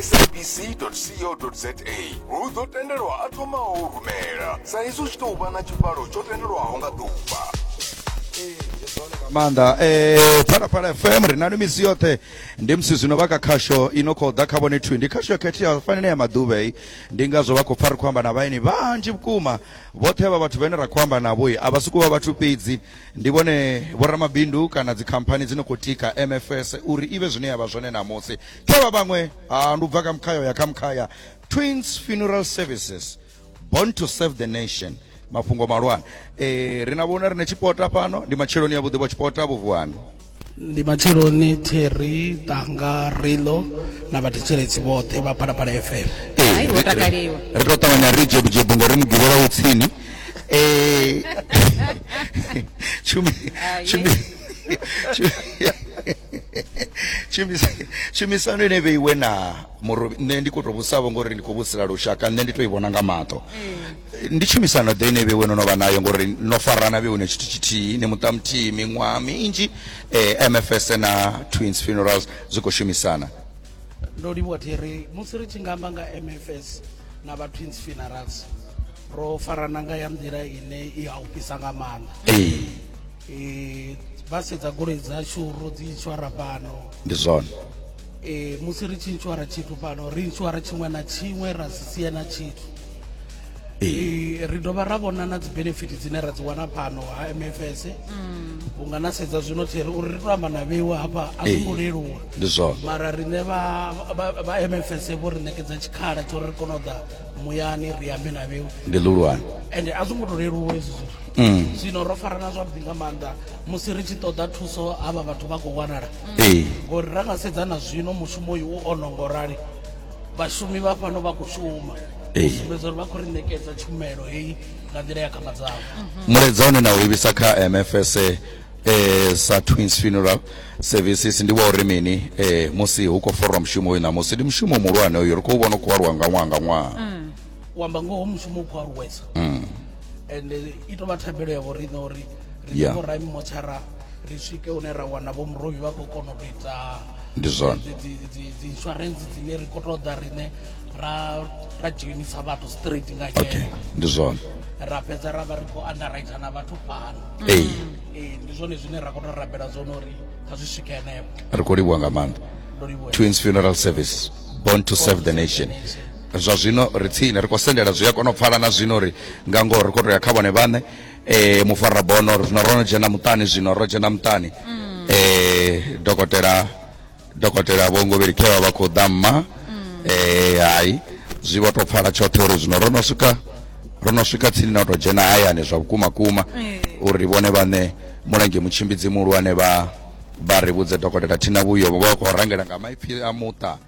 sabc.co.za hu ḓo tendelwa a thomaho u rumela sa izwi hu tshi tou vha na tshivhalo tsho tendelwaho nga ḓuvha nga maanḓa eh phalaphala fm ri na misi yoṱhe ndi musi zwino vha kha khasho i no khou ḓa kha vhone thwi ndi khasho yo khetheaho fanele ya maḓuvha i ndi ngazwo vha khou pfa ri khou amba na vhaeni vhanzhi vhukuma vhoṱhe vha vhathu vhane ra khou amba navho i a vha sokou vha vhathu fhedzi ndi vhone vhoramabindu kana dzikhamphani dzi no khou tika mfs uri i vhe zwine ya vha zwone ṋamusi khe vha vhaṅwe ha ndi u bva kha mkhaya ya kha mkhaya twins funeral services born to serve the nation mafhungo malwane e, ri na vhona rine tshipota fhano ndi matsheloni ya vhuḓi vho tshipota vhuvuwani ndi matsheloni theri tanga rilo na vhathetsheletsi vhoṱhe vha phalaphala fm Hai, wo takaliwa. ri to ṱavhanya ri jebujebu ngori mugivhela wo tsini Eh, tshumi- tshumi- tshumisano ine vheiwe na murobi nṋe ndi kho to vhusavho ngori ndi khou vhusela lushaka nṋe ndi to i vhona nga maṱo mm. ndi tshumisano ḓe ine vheiwe no no vha nayo ngori no farana vheiwe na tshithu tshithihi ni muṱa muthihi miṅwaha minzhi um eh, mfs na twins funerals zwi khou shumisana ndo livhuwa thiri musi ri tshi nga amba nga mfs na vha twins funerals ro farana nga ya nḓila ine i a u fhisa nga maanḓa eh, vha sedza goloi dzashu ro dzi inshwara fhano ndi zwone eh, musi ri tshi inshwara tshithu fhano ri inshwara tshiṅwe na tshiṅwe ra si sie na tshithu Eh, ri dovha ra vhona na dzi benefit dzine ra dzi wana fhano ha mfs unga na sedza zwino thi ri uri ri to amba na vheiwa hafha a zwi ngo Eh. leluwa ndi zwone mara riṋe vha vha- vha mfs vho ri ṋekedza tshikhala tsho ri ri kone u ḓa muyani ri ambe na vheiwa ndi ḽihulwane ende a zwi ngo to leluwa hezwi zwithu mm. zwino ro farana zwavhuḓi nga maanḓa musi ri tshi ṱoḓa thuso havha vhathu vha khou wanala mm. ngori ra nga sedza na zwino mushumo uyu u ono ngo rali vhashumi vha fhano vha khou shuma sumbedza uri vha khou ri ṋekedza tshumelo heyi nga nḓila ya khama dzavho mhm. mulaedza une na u livhisa kha mfs eh sa twins funeral services ndi wa uri mini eh musi hu khou forwa mushumo uyu ṋamusi ndi mushumo muhulwane uyu ri khou vhona u khou aluwa nga ṅwaha nga ṅwaha mm. u amba ngoho mushumo u khou aluwesa mm. and i tou vha thabelo ya vhoriṋe uri ri yeah. vho rami motshara ri swike hune ra wana vho murovi vha khou kona u ita ndi zwone dzi insurance dzine ri khou ṱoḓa riṋe ra ra dzhenisa vhathu straight nga okay. ndi zwone ra fhedza ra vha ri khou underwriter na vhathu fhano ee ee ndi zwone zwine ra khou tou rabela zwone uri kha zwi swike henefho ri khou livhuwa nga maanḓa twins funeral service born to serve the nation zwa zwino ri tsini ri khou sendela zwi a kona u pfala na zwino uri nga ngoho ri khou tou ya kha vhone vhaṋe um mufarabono ri zwino ro no dzhena muṱani zwino ro dzhena muṱani um dokotela dokotela vho ngovheli khe vha vha khou ḓa mma um hai zwi vho tou pfala tshoṱhe uri zwino ro no swika ro no swika tsini na u tou dzhena hayani zwa vhukuma kuma uri vhone vhaṋe mulenzhe mutshimbidzi muhulwane vha vha ri vhudze dokotela thina vhuyo vho vha vha khou rangela nga maipfhi a muṱa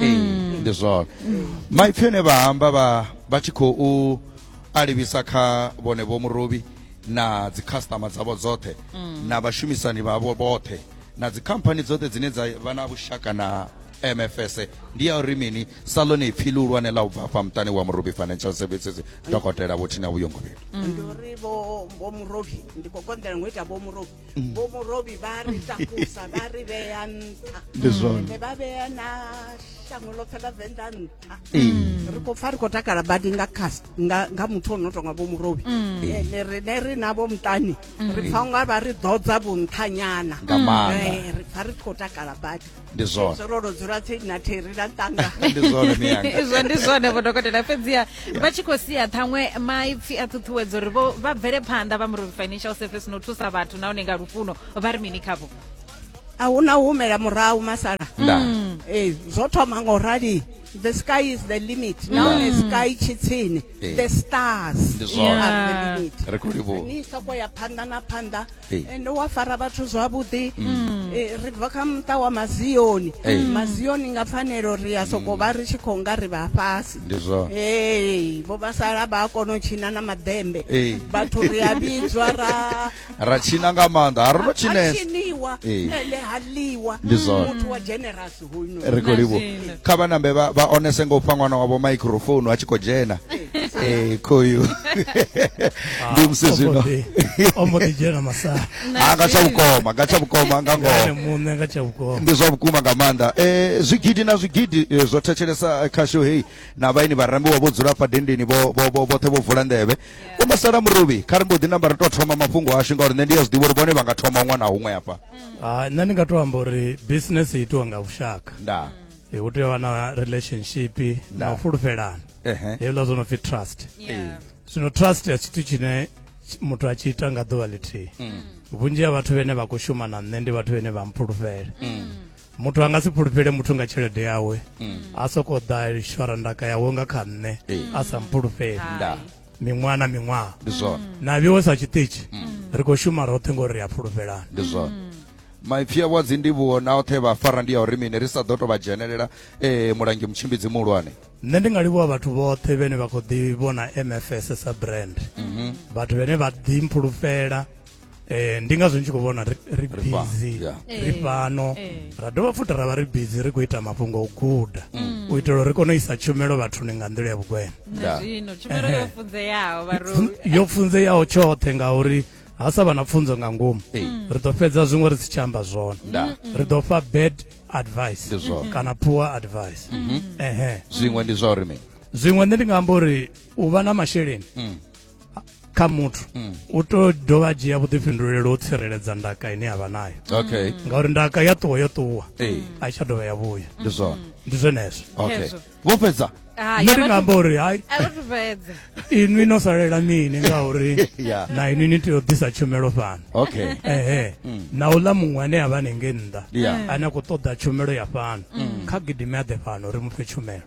ee ndi zwone maipfi ane vha amba vha vha tshi khou a livhisa kha vhone vho murobi na dzikhasitama dzavho dzoṱhe na vhashumisani vhavho vhoṱhe na dzikhamphani dzoṱhe dzine dza vha na vhushaka na mfs ndi ya uri mini sa ḽone ipfi ḽihulwane ḽa u bva afha muṱani wa murobi financial services dokotela vhothina vhuyongovhelo ndi uri vho vho murovi ndi khou konḓela ngo ita vho murovi mm. vho murobi vha ri takusa vha ri vhea nṱha ende vha vhea na shango ḽoṱhe ḽa venḓa nṱha mm. ri khou pfa ri khou takala badi nga cast nga muthu o no tonga vho murobi mm. ende rine ri navho muṱani ri pfa unga vha ri ḓodza vhunṱhanyana eh, ri pfa ri khou takala badi ndi zwone zwo ro dzula tsini na theri na tanga ndi zwone miyanga izwo ndi zwone vho dokotela fhedziha vha tshi khou sia ṱhaṅwe maipfi a ṱhuṱhuwedzo uri vho vha bvele phanḓa vha murovi financial service no thusa vhathu nahone nga lufuno vha ri mini khavho a hu na u humela murahu masala nda ee zwo thoma nga u rali the sky is the limit mm. now the sky tshi tsini the stars are the limit ri khou livhuwa ni soko ya phanḓa na phanḓa ende wa fara vhathu zwavhuḓi mm. eh, ri bva kha muṱa wa mazioni mazioni nga pfanelo ri ya soko vha ri tshi khou nga ri vha fhasi ee vho vha sala vha a kona u tshina na maḓembe vhathu ri a vhidzwa ra ra tshina nga maanḓa a ri no tshinesa tshiniwa ele ha ḽiwa muthu wa generous ri khou livhuwa kha vha nambe vha vha onese ngo fha ṅwana wavho microphone a tshi khou dzhena eh khoyu ah, ndi musi zwino ombo ḓi dzhena masala ha ah, nga tsha vhukoma nga tsha vhukoma nga ngoho muṋe nga tsha vhukoma ndi zwa vhukuma nga maanḓa eh zwigidi na zwigidi eh, zwo thetshelesa kha show heyi na vhaini vharambi wa vho dzula fha dendeni vho vho vhoṱhe vho vula nḓevhe u masala muruvhi kha ri mbo ḓi namba ri tou thoma mafhungo ashu ngauri nṋe ndi ya zwi ḓivha uri vhone vha nga thoma ṅwana huṅwe hafha Ah, nṋe ndi nga to amba uri business i itiwa nga vhushaka nda Eh, hu tea u vha na relationship na u fulufhelana Ehe. hezwiḽa zwo no pfi trust Yeah. zwino trust ya tshithu tshine tshi- muthu a tshi ita nga ḓuvha ḽithihi vhunzhi ha vhathu vhene vha khou shuma na nṋe ndi vhathu vhene vha mpfulufhela muthu a nga si fhulufhele muthu nga tshelede yawe mm. a soko ḓa lishwara ndaka yawe nga kha nṋe eh. a sa mpfulufheli miṅwaha na miṅwaha ndi zwone mm. na vhiwe sa tshiṱitshi mm. ri khou shuma roṱhe ngori ri a fhulufhelana ndi zwone maipfi a vhadzi ndivhuwo na oṱhe vha fara ndi ya uri mini ri sa ḓo to vha dzhenelela um mulangi mutshimbidzi muhulwane nṋe ndi nga livhuwa vhathu vhoṱhe vhene vha khou ḓi vhona mfs sa brand mhm. vhathu vhene vha ḓi mphulufhela eh ndi ngazwo ndi tshi khou vhona ri ri Ri fa- busy yeah. ri Eh, fhano eh. ra dovha futhi ra vha ri busy ri khou ita mafhungo o guda u itela uri ri kone u isa tshumelo vhathuni nga nḓila ya vhugwena na Yeah. zwino tshumelo yo funzeaho vharoi yo pfunzeyaho tshoṱhe ngauri ha sa vha na pfunzo nga ngomu Ee. ri ḓo fhedza zwiṅwe ri si tshi amba zwone Da. ri ḓo fha bad advice Ndi zwone. kana poor advice ehe zwiṅwe ndi zwa uri mini zwiṅwe nṋe ndi nga amba uri u vha na masheleni kha muthu mm. u to dovha a dzhia vhuḓifhinduleli u tsireledza ndaka ine yavha nayo okay mm. ngauri ndaka ya ṱuwa yo ṱuwa a i tsha dovha ya vhuya ndi zwone mm. ndi zwenezwo okay vho fhedza ah, nṋe ndi nga amba uri hai inwi no salela mini ngauri na inwi ni tea u ḓisa tshumelo fhano okay ehe na u ḽa muṅwe ane a vha nenge nnḓa ane a khou ṱoḓa tshumelo ya fhano kha gidime a ḓe fhano ri mu fhe tshumelo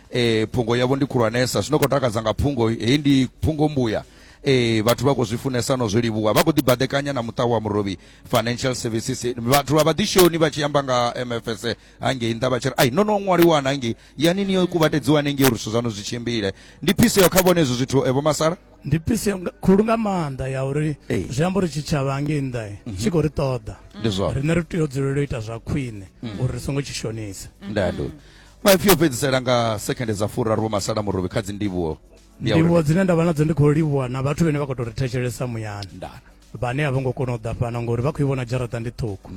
e, phungo yavho ndi khulwanesa zwino khou takadza nga phungo heyi ndi phungo mbuya e, vhathu vha khou zwi funesa no zwi livhuwa vha khou ḓibaḓekanya na muṱa wa murovhi financial services vhathu vha vhaḓishoni vha tshi amba nga mfs hangei nnḓa vha tshi ri ai no no ṅwaliwana hangei yani ni yo kuvhatedziwa hanengei uri zwithu zwaṋu zwi tshimbile ndi phiseo kha vhone hezwo zwithu evo masala ndi pise khulu nga maanḓa ya uri zwi amba uri tshitshavha ngei nnḓa mhm. tshi khou ri ṱoḓa riṋe ri tea u dzulela u ita zwa khwine mhm. uri ri songo tshi shonisa ndado maipfi o fhedzisela nga sekhende dza furaru vho masala murovhi kha dzindivhuwo ndivhuwo dzine nda vha nadzo ndi khou livhuwa na vhathu vhene vha khou tou ri thetshelesa muyani ndana vhane a vho ngo kona u ḓa fhano ngori vha khou i vhona dzharaṱa ndi ṱhukhu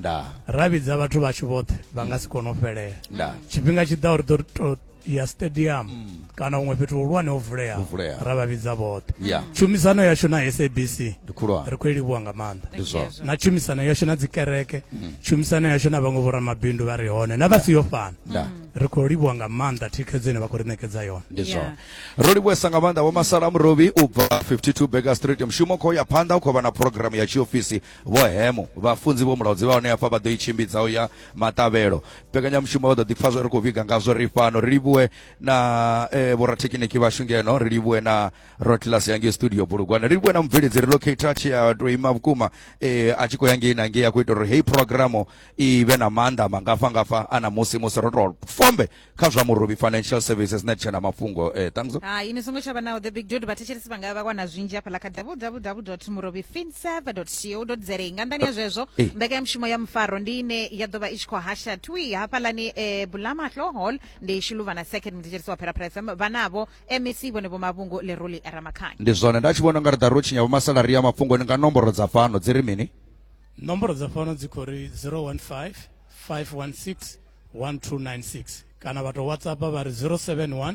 ra vhidza vhathu vhashu vhoṱhe vha nga si kone u fhelela tshifhinga tshi ḓa uri ḓo ya stadium mm. kana huṅwe fhethu hulwane ho vuleaho Huvuleaho. ra vha vhidza vhoṱhe Yeah. tshumisano yashu na sabc Ndi khulwane. ri khou i livhuwa nga maanḓa Ndi zwone. na tshumisano yashu na dzikereke tshumisano yashu na vhaṅwe vhoramabindu vha re hone na vha si yo fana Nda. ri khou livhuwa nga maanḓa thikhedzo ine vha khou ri ṋekedza yone ndi Yeah. zwone ro livhuwesa nga maanḓa vho masala murobi u bva 52 baker street mushumo khou ya phanḓa u khou vha na programu ya tshiofisi vho hemo vhafunzi vho mulaudzi vha hone hafha vha ḓo i tshimbidza u ya maṱavhelo mbekanyamushumo vha ḓo ḓipfa zwo ri khou vhiga ngazwo ri fhano ri livhuwe na eh, vhorathekiniki vhashu ngeno ri livhuwe na rotlas ya ngei studio bulugwana ri livhuwe na mubveledzi relocator tshi a to ima vhukuma eh, a tshi khou ya ngei na ngei a khou ita uri heyi programu i vhe na maanḓa mangafha ngafha ana musi musi ro to fombe kha zwa murobi financial services na tshena mafhungo eh, thanks hai ni songo tsha vha naho the big dude vhathetshelesi vha nga vha wana zwinzhi hafhaḽa kha www murobi finserver co za nga nḓani ya zwezwo Eh. mbekanyamushumo ya mufaro ndi ine ya ḓo vha i tshi khou hasha twi hafhaḽani eh, bulamahloo hall ndi shuluvhana second muthetsheliso wa pheraphere fm vhanavho mec vhone vho mavhungu leroli ramakhanya ndi zwone nda tshi vhona unga ri ḓa ro tshinya vhomasalari ya mafhungoni nga nomboro dza fhano dzi ri mini nomboro dza fhano dzi khou ri 015 516 1296 kana vha tou whatsapp vha ri 071